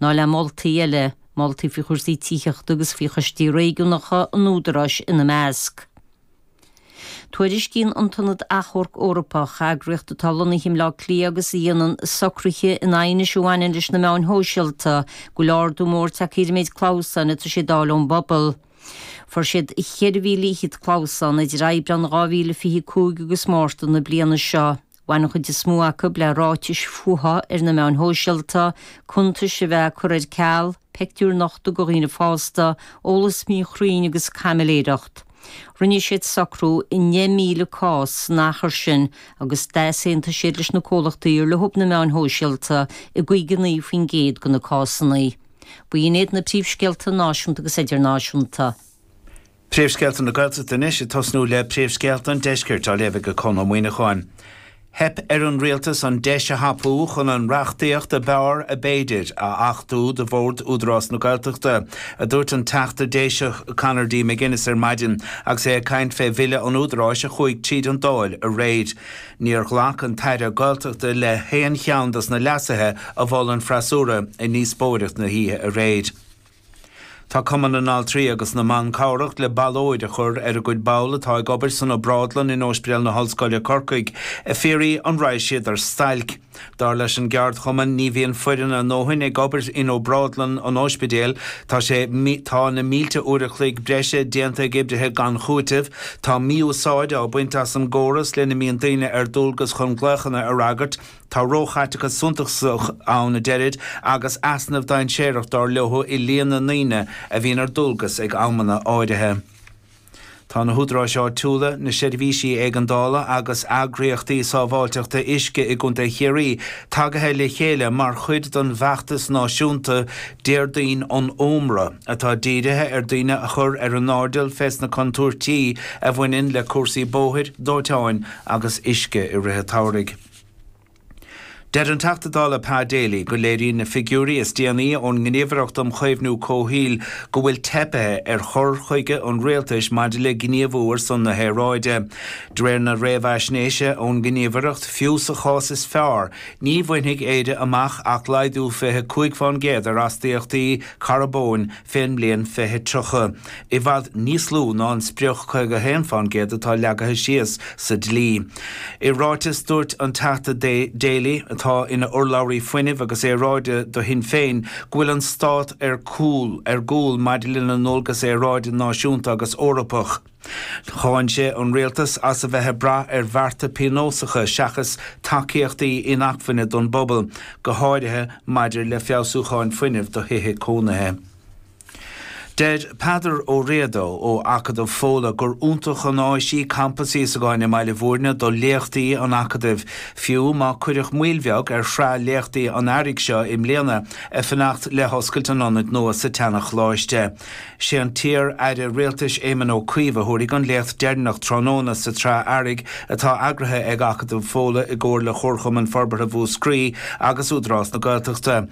Ná le moltaí eile, moltaí faoi chúrsaí tithíochta agus faoi choistí réigiúnacha an Údaráis ina measc. Tuairiscíonn an tIonad Achomharc Eorpach, eagraíocht atá lonnaithe i mBleá Cliath agus a dhéanann socruithe in aighnis a bhaineann leis na meáin shóisialta, go bhfuil ardú mór tagtha ar an méid clamhsáin atá siad a fháil ón bpobal. Fuair siad 4,000 fhichead clamhsán idir Aibreán 2025 agus Márta na bliana seo. Bhain an chuid is mó acu le ráitis fuatha ar na meáin shóisialta, cuntais a bheith á cur ar ceal, peictiúir nochta de dhaoine fásta, eolas míchruinn agus caimiléireacht. Rinne siad socrú i ndeich míle cás san achar sin agus d'easaontaigh siad leis na comhlachtaí ar leob na meáin shóisialta i gcaoga a naoi faoin gcéad de na cásanna. B'in iad na príomhscéalta náisiúnta agus idirnáisiúnta. Príomhscéalta na Gaeltachta anois ag tosnú le Príomhscéalta an Deiscirt á léamh ag Conn Ó Muíneacháin. Theip ar an rialtas an deis a thapú chun an reachtaíocht ab fhearr ab fhéidir a achtú do Bhord Údarás na Gaeltachta, a dúirt an Teachta Déiseach Conor D McGuinness ar maidin agus é ag caint fé Bhille an Údaráis a chuaigh tríd an Dáil aréir. Níor ghlac an tAire Gaeltachta le haon cheann dos na leasuithe a mhol an freasúra i ndíospóireacht na hoíche aréir. Tá Cumann na nAltraí agus na mBan cabhrach le ballóid a chur ar a gcuid ball atá ag obair san obrádlann in Óispedeal na hOllscoile Corcaigh ag fiafraí an raghadh siad ar stailc. Dar leis an gceardchumann ní bhíonn foireann a ndóthain ag obair in obrádlann an óispidéil tá sé tá na mílte uair a chloig breise déanta ag oibrithe gan chúiteamh tá mí-úsáid á baint as an gcóras lena mbíonn daoine ar dualgas chun glaochanna a fhreagairt Tá róchaiteachas suntasach ann a deirid agus easnamh dainséarach dar leo i líon na ndaoine a bhíonn ar dualgas ag amanna áirithe. Tá na húdaráis áitiúla, na seirbhísí éigeandála agus eagraíochtaí sábháilteachta uisce i gContae Chiarraí tagaithe le chéile mar chuid den bhfeachtas náisiúnta Déardaoin an Ómra atá dírithe ar daoine a chur ar a n-airdeall fés na contúirtí a bhaineann le cúrsaí bóthair, dóiteáin agus uisce i rith an tsamhraidh. Deir an Teachta Dála Pa Daly go léiríonn na figiúirí is déanaí ón nGníomhaireacht um Chaomhnú Comhshaoil go bhfuil teipthe ar chur chuige an Rialtais maidir le gníomhú ar son na haeráide. De réir na réamhaisnéise ón nGníomhaireacht, fiú sa chás is fearr, ní bhainfidh Éire amach ach laghdú 25 fán gcéad ar astaíochtaí carbóin fén mbliain 2030, i bhfad níos lú ná an sprioc 51 fán gcéad atá leagaithe síos sa dlí. I ráiteas, dúirt an Teachta Daly, atá ina urlabhraí Fuinnimh agus Aeráide do Shinn Féin, go bhfuil an Stát ar cúl, ar gcúl, maidir lena ndualgas aeráide náisiúnta agus Eorpach. Cháin sé an rialtas as a bheith ag brath ar bhearta pionósacha seachas tacaíochtaí inacmhainne don bpobal, go háirithe maidir le feabhsúcháin fuinnimh do thithe cónaithe. Deir Peadar Ó Riada ó Acadamh Fódhla gur iontach an áis í Campas Íosagáin i mBaile Mhúirne do léachtaí an Acadaimh, fiú má cuireadh moill bheag ar shraith léachtaí an Earraigh seo i mbliana ag fanacht le hoscailt an ionaid nua sa tseana-Choláiste. Sé an t-iar aire rialtais Éamon Ó Cuív a thabharfaidh an léacht deireanach tráthnóna sa tSraith Earraigh atá eagraithe ag Acadamh Fódhla i gcomhar le Comharchumann Forbartha Mhúscraí agus Údarás na Gaeltachta.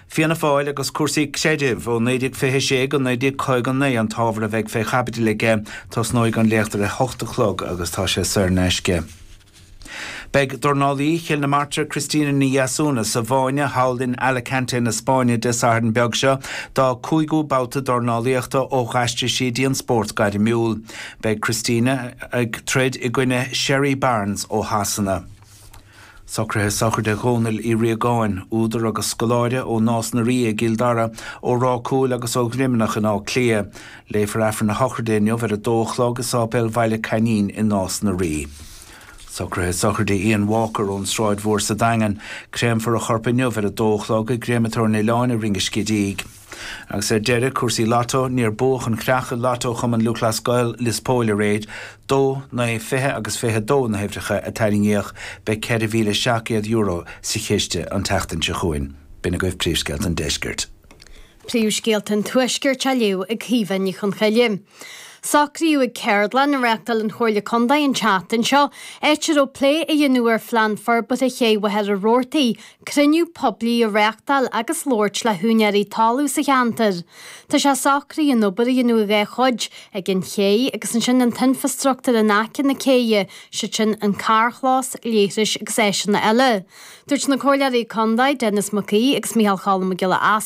Fianna Fáil agus cúrsaí creidimh ó 1926 go 1959 an t-ábhar a bheidh fé chaibidil aige. Tosnóidh an léacht ar a hocht a chlog agus tá sé saor in aisce. Beidh dornálaí Chill na Martra Christina Ní Dheasúna sa bhfáinne thall in Alicante na Spáinne Dé Sathairn beag seo dá cúigiú babhta dornálaíochta ó d'aistrigh sí dtí an spórt gairmiúil. Beidh Christina ag troid i gcoinne Sherry Barnes ó Shasana. Socruithe sochraide Dhónaill Uí Riagáin, údar agus scoláire, ó Nás na Ríogh i gCill Dara, ó Ráth Cúil agus ó Dhroimneach in Áth Cliath. Léifear Aifreann na Sochraide inniu ar a dó a chlog i Sáipéal Bhaile Cainín i Nás na Rí. Socruithe sochraide Ian Walker ón tSráid Mhór sa Daingean. Créamfar a chorp inniu ar a dó a chlog i gCréamatóir an Oileáin i Rinn an Scidígh. Agus ar deireadh, cúrsaí Lotto, níor buadh an chreach i Lotto Chumann Lúthchleas Gael Lios Póil aréir. Dó, naoi, fiche agus fiche a dó na huimhreacha a tarraingíodh. Beidh €4,700 sa chiste an tseachtain seo chugainn. B'in agaibh príomhscéalta an deiscirt. Príomhscéalta an Tuaiscirt á léamh ag Caoimhe Ní Chonchoille. Socraíodh ag ceardlann a reáchtáil an Chomhairle Contae an tseachtain seo áit a raibh plé á dhéanamh ar Phlean Forbartha Ché Mhachaire Rabhartaigh, cruinniú poiblí a reáchtáil agus labhairt le húinéirí talún sa cheantar. Tá sé socraithe an obair a dhéanamh ina dhá chuid, ag an ché agus ansin an t-infreastruchtúr in aice na céidhe, siad sin an carrchlós, leithris agus áiseanna eile. Dúirt na Comhairleoirí Contae, Denis Mac Aoidh agus Micheál Cholm Mac Giolla Easbuig,